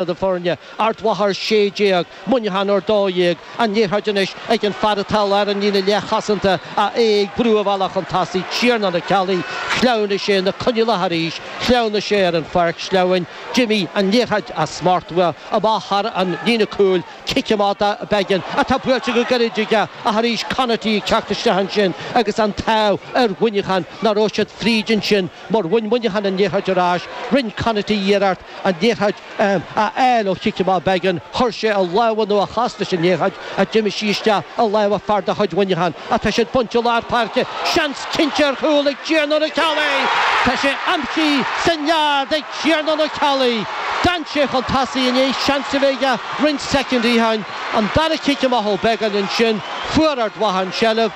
do foirne Ard Mhacha ar 16, Muineachán ar 12, an liathróid anois ag an fear atá i lár an líne leathchosanta ach é ag brú a bhealach chun tosaigh, Tiarnán Ó Ceallaigh, shleamhnaigh sé sna coinníollacha arís, shleamhnaigh sé ar an pháirc shleamhain, d'imigh an liathróid as smacht uaidh, amach thar an líne cúil, cic amach do Beggan, atá buailte go gairid aige ach arís Conaty ag teacht isteach ansin agus an t-ádh ar Mhuineachán nach raibh siad fríd ansin mar bhain Muineachán an liathróid ar ais, rinne Conaty iarracht. an liathróid a fháil ó chic amach Beggan. Chuir sé a lámha nó a chos leis an liathróid ach d'imigh sí isteach i lámha fear de chuid Mhuineacháin. Ach tá sí bainte i lár páirce. Seans cinnte ar chúl ag Tiarnán Ó Ceallaigh! Tá sé aimsithe sa nead ag Tiarnán Ó Ceallaigh. D'fhan sé chun tosaigh i ndiaidh seans a bheith aige roinnt soicindí ó shin. An dara cic amach ó Beggan ansin. Fuair Ard Mhacha an tseilbh.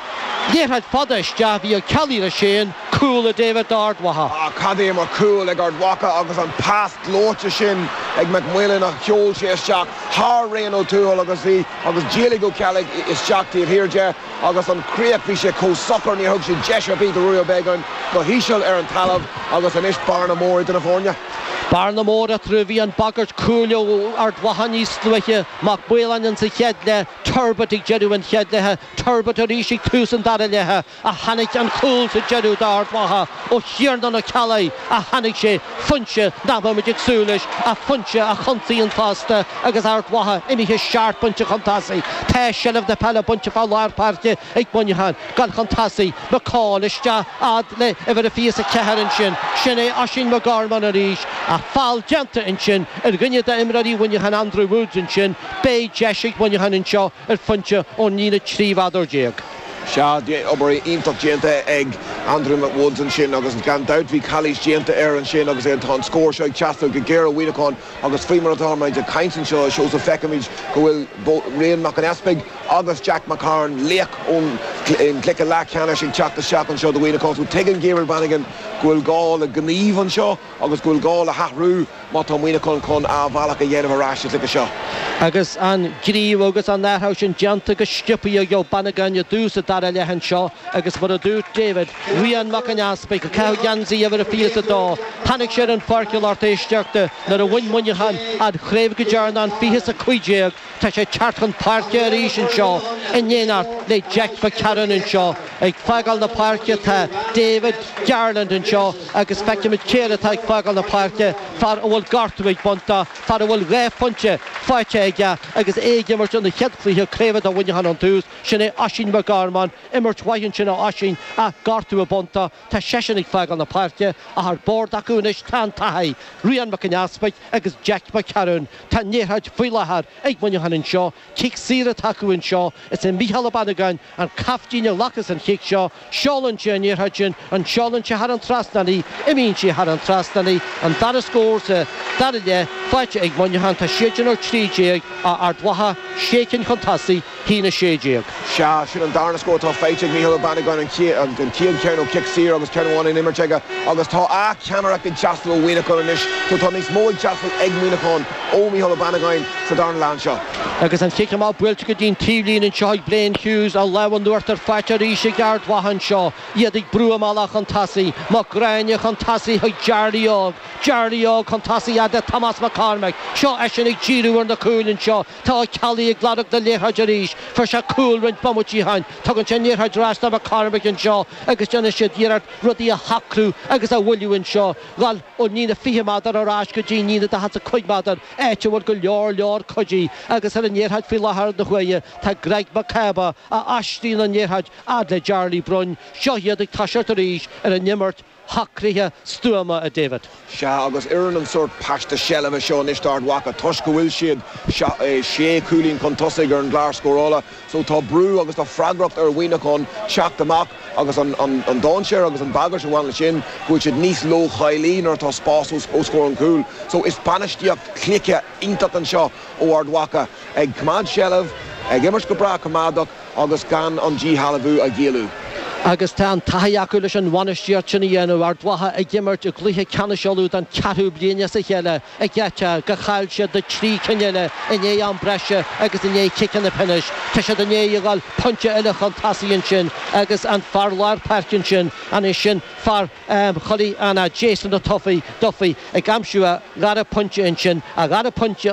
Liathróid fada isteach bhí Ó Ceallaigh leis féin. Cúl, a David, d'Ard Mhacha. Ach cad é mar chúl ag Ard Mhacha agus an pas gleoite sin ag Mac Maoláin a sheol sé isteach thar Rian Ó Tuathail agus bhí agus d'éalaigh Ó Ceallaigh isteach taobh thiar de agus an chríoch bhí sé chomh socair níor thug sé deis ar bith do Ruairí Ó Beagáin go híseal ar an talamh agus anois bearna mór idir na foirne. Bearna mór eatarthu. Bhí an bhagairt cúil ó Ard Mhacha níos luaithe, Mac Maoláin ins an chéad leath, Turbitt ag deireadh an chéad leatha, Turbitt arís ag tús an dara leatha. ach tháinig an cúl sa deireadh d'Ard Mhacha ó Thiarnán Ó Ceallaigh a tháinig sé, foinse nach mbeadh muid ag súil leis ach foinse a chontaíonn fosta agus Ard Mhacha imithe seacht bpointe chun tosaigh. Tá seilbh na peile bainte fá lár páirce ag Muineachán, ag gabháil chun tosaigh, McCaul isteach fhad le uimhir a 24 ansin, sin é Oisín McGorman arís, ach feall déanta ansin ar dhuine d'imreoirí Mhuineacháin, Andrew Woods ansin, beidh deis ag Muineachán anseo ar phointe ón líne 13 mhéadar. Sea, bhí obair iontach déanta ag Andrew McWoods ansin agus gan dabht bhí calaois déanta air ansin agus tá an scór seo ag teastáil go géar ó Mhuineachán agus faoi mar atáimid ag caint anseo, a Seosamh, feicimid go bhfuil Rian Mac an Easpaig agus Jack McCarron, laoch ón gcluiche leathcheannais, ag teacht isteach anseo do Mhuineachán so tuigeann Gabriel Bannigan go bhfuil gá le gníomh anseo. agus go bhfuil gá le hathrú má tá Muineachán chun a bhealach a dhéanamh ar ais sa chluiche seo. Agus an gníomh agus an t-athrú sin déanta go sciobtha ag Bannigan i dtús an dara leath anseo agus mar a dúirt David, Rian Mac an Easpaig, ag caitheamh geansaí uimhir a fiche is a dó, tháinig sé ar an pháirceáil orthu isteach di nuair a bhain Muineachán an chraobh go deireanach in 2015. Tá sé ag teacht chun páirce arís anseo in éineacht le Jack McCarron anseo. Ag fágáil na páirce tá David Garland anseo agus feicimid cé eile atá ag fágáil na páirce, fear a bhfuil gortú ag baint dó, fear a bhfuil dhá phointe faighte aige agus é ag imirt ina chéad chluiche craoibhe do Mhuineachán ón tús, sin é Oisín McGorman. Imirt mhaith ansin ó Oisín ach gortú ag baint dó, tá seisean ag fágáil na páirce ach ar bord acu anois tá an taithí, Rian Mac an Easpaig agus Jack McCarron. Tá an liathróid faoi láthair ag muineachán anseo, cic saor atá acu anseo, is é Mícheál Ó Banagáin an caiftín a ghlacas an chic seo, seolann sé an liathróid sin, an seolann sé thar an trasnán í, imíonn sí thar an trasnán í, an dara scór sa dara leath faighte ag Muineachán, tá siadsan ar a trí déag, tá Ard Mhacha, sé cinn chun tosaigh. haon a sé déag. Sea, sin an darna scór atá faighte ag Micheál Ó Banagáin, an chéad cheann ó chic saor agus ceann amháin in imirt aige, agus tá a' ceannaireacht ag teastáil ó Mhuineachán anois so tá níos mó ag teastáil ag Muineachán ó Micheál Ó Banagáin sa darna leath anseo. Agus an chic amach buailte go dtí'n taobhlíne anseo ag Blaine Hughes, an lámh in uachtar faighte arís ag Ard Mhacha anseo, iad ag brú a mbealach chun tosaigh, Mac Gráine chun tosaigh chuig Jarly Óg, Jarly Óg chun tosaigh fhad le Tomás Mac Cormaic, seo eisean ag díriú ar na cúil anseo, Tá Ó Ceallaigh ag lorg na liathróide arís. Fuair sé cúl roinnt bomaití ó shin. Tugann sé an liathróid ar ais do Mac Cormaic anseo agus déanann siad iarracht rudaí a shocrú agus a mhoilliú anseo. Dul ón líne a fiche méadar ar ais go dtí'n líne daichead 's a cúig méadar, áit a bhfuil go leor leor cuidithe, agus ar an liathróid faoi láthair na huaire tá Greg McCabe a aistríonn an liathróid fhad le Jarly Broin. Seo iad ag toiseacht arís ar an imirt. shocraithe stuama, a David. Sea, agus oireann an sórt paiste seilbhe seo anois d'Ard Mhacha toisc go bhfuil siad sé chúilín chun tosaigh ar an gclár scórála so tá brú agus tá freagracht ar Mhuineachán teacht amach agus an dainséar agus an bhagairt a bhaineann leis sin go bhfuil siad níos leochailí nuair atá spás os comhair an chúil so is bainistíocht chluiche iontach anseo ó Ard Mhacha ag coimeád seilbh, ag imirt go breá coimeádach. agus gan an díshealbhú a ghéilleadh. Agus tá an taithí acu leis an bhainistíocht sin a dhéanamh. Ard Mhacha ag imirt i gcluiche ceannais Uladh don cheathrú bliain as a chéile ag geata gur chaill siad na trí cinn eile i ndiaidh am breise agus i ndiaidh chiceanna pionóis. Tá siad i ndiaidh a dhul pointe eile chun tosaigh ansin agus an fear láir páirce ansin, an é sin fear Choilleach Eanach, Jason Duffy ag aimsiú a dhara pointe ansin, a dhara pointe.